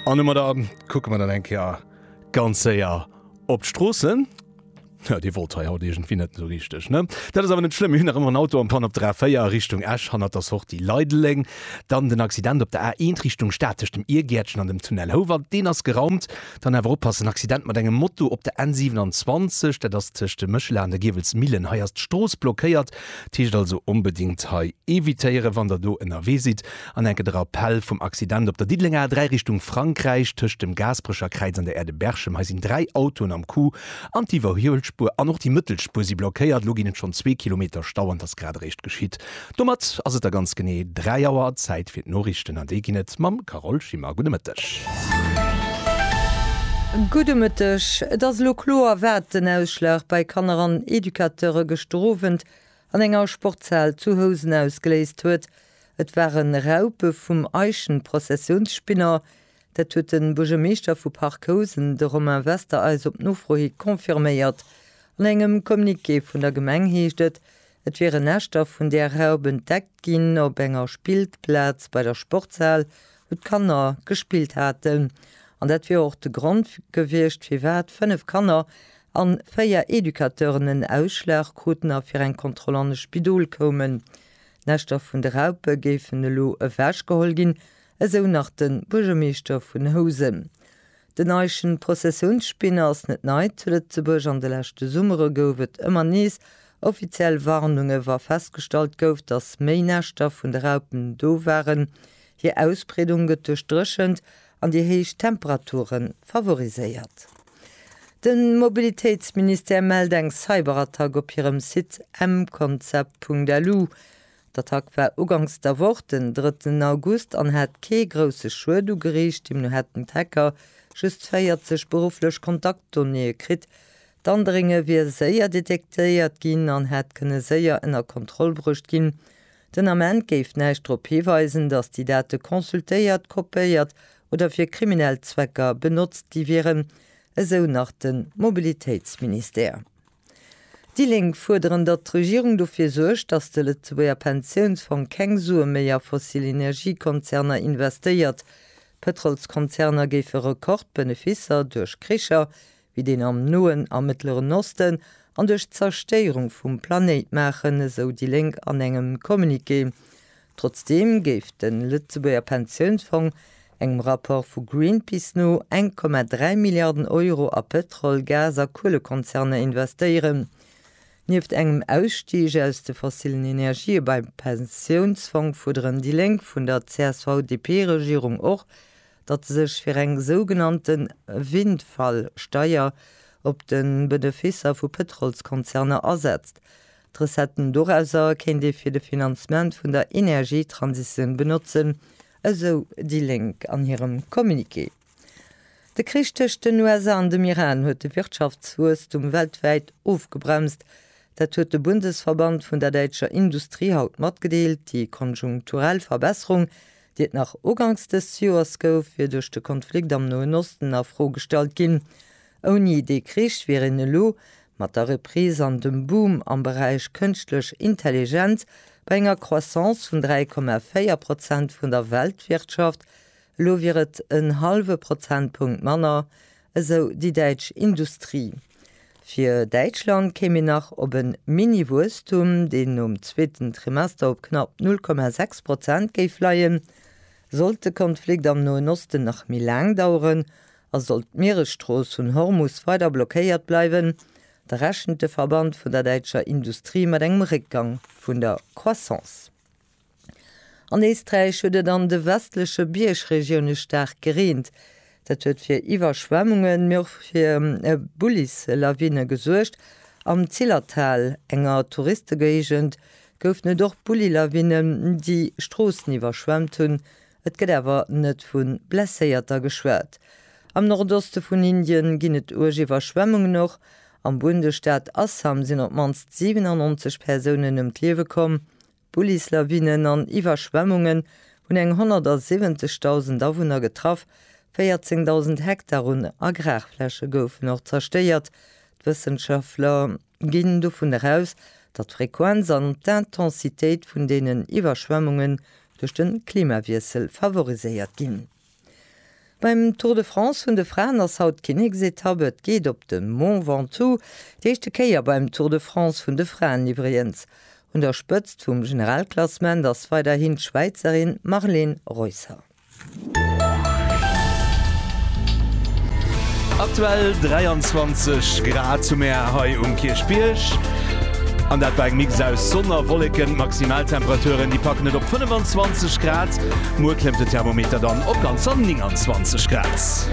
An ëmmer da kucke mer dann eng Kéier ganz séier op d'Stroossen. Ja, dee wollt hei haut iergendwéi net esou richteg, ne? Dat ass awer net schlëmm, mir hunn nach ëmmer en Auto am Panne op der A4 Richtung Esch hanner der Sortie Leideleng. Dann den Accident op der A1 Richtung Stad tëscht dem Iergäertchen an dem Tunnel Houwald, deen ass geraumt. Dann awer oppassen, Accident mat engem Moto op der N27, dat ass tëscht dem Méchela an der Giewelsmillen. Hei ass d'Strooss blockéiert, dat heescht also onbedéngt hei evitéieren, wann der do ënnerwee sidd. An enke de Rappell vum Accident op der Diddelenger A3 Richtung Frankräich, tëscht dem Gaasperecher Kräiz an der Aire de Berchem. Hei sinn dräi Autoen am Coup an d'Iwwerhuelspuer an och déi Mëttelspur si blockéiert. Elo ginn et schonn zwee Kilometer Stau an et ass grad eréischt geschitt. Domat ass et da ganz genee 3 Auer. Zäit fir d'Noriichten an déi ginn et mam Carole Schimmer. Gudde Mëtteg. Gudde Mëtteg. Et ass elo kloer, wat den Ausschlag bei Kanner an Educateure gëschter Owend an enger Sportshal zu Housen ausgeléist huet. Et waren Raupe vum Eichenprozessionsspinner. Dat huet de Buergermeeschter vu Parc Housen, de Romain Wester, eis op Nofro hi confirméiert. An engem Communiqué vun der Gemeng heescht et, et wiere Näschter vun där Raup entdeckt ginn op enger Spiltplaz bei der Sportshal, wou d'Kanner gespillt haten. An dat wier och de Grond gewiescht, firwat fënnef Kanner a véier Educateuren en Ausschlag kruten a fir eng Kontroll an e Spidol koumen. D'Näschter vun de Raupe géifen elo ewechgeholl ginn, esou nach de Buergermeeschter vun Housen. Den Eischen Prozessiounsspinner ass net nei zu Lëtzebuerg. An de leschte Summere gouf et ëmmer nees offiziell Warnunge wa festgestallt gouf, datt méi Näschter vun de Raupen do waren. Hir Ausbreedung gëtt duerch d'Dréchent an déi héich Temperature favoriséiert. De Mobilitéitsministère mellt eng Cyberattack op hirem Site mconcept.lu. D'Attack war uganks der Woch, den drëtten August, an hat kee grousse Schued ugeriicht. Deemno hätten d'Hacker just 40 berufflech Kontaktdonnéeë kritt. D'Andrénge wier séier detektéiert ginn an hätt kënne séier ënner Kontroll bruecht ginn, Den Ament géif näischt drop hiweisen, datt déi Date consultéiert, kopéiert oder fir kriminell Zwecker benotzt gi wieren, esou nach de Mobilitéitsministère. Déi Lénk fuerderen, datt d'Regierung dofir suergt, datt de Lëtzebuerger Pensiounsfong keng Sue méi a fossil Energiekonzerner investéiert. D'Pëtrolskonzerner géife Rekordbeneficer duerch Kricher, wéi deen am Noen a Mëttleren Osten, an duerch d'Zerstéierung vum Planéit maachen, esou déi Lénk an engem Communiqué. Trotzdeem géif de Lëtzebuerger Pensiounsfong engem Rapport vu Greenpeace no 1,3 Milliarden Euro a Pëtrol-, Gas a Kuelekonzerner investéieren. Nieft engem Ausstig aus de fossillen Energië beim Pensiounsfong fuerderen déi Lénk vun der CSV-DP-Regierung och, datt e sech fir eng sougenannte Windfall-Steier op de Beneficer vu Pëtrolskonzerner asetzt. D'Recetten dorauser kéint ee fir de Finanzement vun der Energietransitioun benotzen, esou déi Lénk an hirem Communiqué. De Krich tëscht den USA an dem Iran huet de Wirtschaftswuesstum weltwäit ofgebremst. Dat huet de Bundesverband vun der däitscher Industrie haut matgedeelt. Déi konjunkturell Verbesserung déi et nach ugangs dëst Joers gouf, wier duerch de Konflikt am Noen Osten a Fro gestallt ginn. Ouni dee Krich wier een elo, mat der Reprise an dem Boom am Beräich Kënschtlech Intelligenz, bei enger Croissance vun 3,4 Prozent vun der Weltwirtschaft, elo wier et en hallwe Prozentpunkt manner, esou déi däitsch Industrie. Fir Däitschland kéim een nach op e Mini-Wuesstum, deen nom zweeten Trimester op knapp 0,6 Prozent géif leien. Sollt de Konflikt am Noen Osten nach méi laang daueren a sollt d'Mieresstrooss vun Hormus weider blockéiert bleiwen, da rechent de Verband vun der däitscher Industrie mat engem Réckgang vun der Croissance. An Éisträich huet et an de westleche Biergregioune staark gereent. Dat huet fir Iwwerschwemmungen, mee och fir Bullislawine gesuergt. Am Zillertal, enger Touristegéigend, goufen et och Bullilawinnen, déi Stroossen iwwerschwemmt hunn. Et gëtt awer net vu Blesséierter geschwat. Am Nordoste vun Indien ginn et uerg Iwwerschwemmungen. Och am Bundesstaat Assam sinn op d'mannst 97 Persounen ëm d'Liewe komm. Bullislawinnen an Iwwerschwemmungen hunn eng 170.000 Awunner getraff, 14.000 Hektar un Agrarfläche goufen och zerstéiert. D'Wëssenschaftler ginn dovun eraus, datt d'Frequenz an d'Intensitéit vun deenen Iwwerschwemmungen duerch de Klimawiessel favoriséiert ginn. Beim Tour de France vun de Fraen ass haut d'Kinneksetapp. Et geet op de Mont Ventoux, déi éischte Kéier beim Tour de France vun de Fraen iwwregens. Un der Spëtzt vum Generalklassement ass weiderhin d'Schwäizerin Marlene Reusser. Aktuell 23 Grad zum Är hei um Kierchbierg, an dat bei engem Mix aus Sonn a Wolleken. D'Maximaltemperaturen, déi packen et op 25 Grad. Muer klëmmt den Thermometer dann op ganzer 29 Grad.